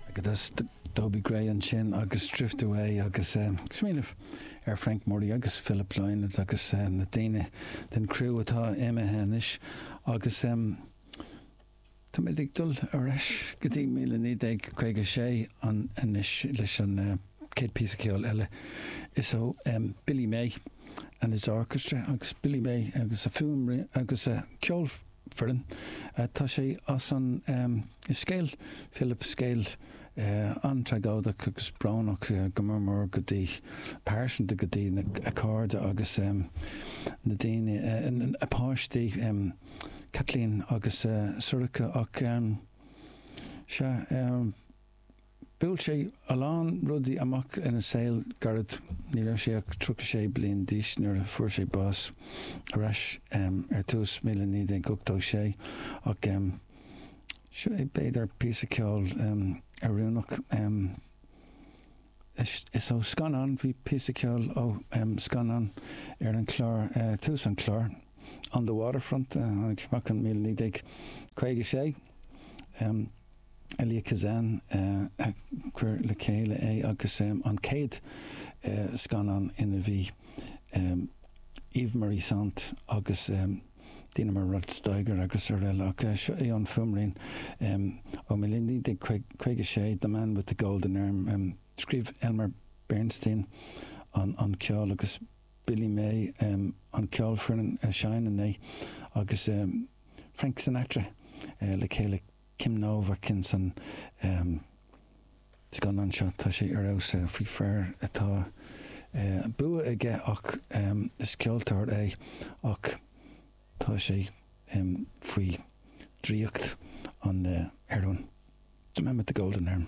Agadsa Dobie Gray ansin agus Drift Away agus smaoineamh ar Frank Murray agus Philip Lynott agus na daoine den criú atá imithe anois agus táimid ag dul ar ais go dtí 1956 anois leis an chéad phíosa ceoil eile is ó Billy May and his Orchestra agus Billy May agus a fuaim agus a ceol foireann. Tá sé i scéal Philip, scéal an-tragóideach agus brónach go mór mór go dtí pearsanta go dtí a cairde agus na daoine, a páistí Caitlín agus Sorcha ach sea, Bhuail sé a lán rudaí amach ina saol gairid, ní raibh sé ach 36 bliain d'aois nuair a fuair sé bás, ar ais ar tús 1986, ach seo é b'fhéidir píosa ceoil oiriúnach. Is ó scannán, bhí píosa ceoil ó scannán ar an chlár tús an chláir, On the Waterfront, a tháinig amach in 1956. Elia Kazan a chuir le chéile é agus an chéad scannán ina bhí Eva Marie Saint agus. Dheineamar Rod Steiger agus araile, ach seo é an fuaimrian. Ó 1956, The Man with the Golden Arm. Scríobh Elmer Bernstein an ceol agus Billy May an ceolfhoireann a sheinneann é, agus Frank Sinatra le chéile. Kim Novak insan scannán seo. Tá sé ar fheabhas. Faoi fear atá bua aige ach is ceoltóir é ach tá sé faoi draíocht an heroin. The Man with the Golden Arm.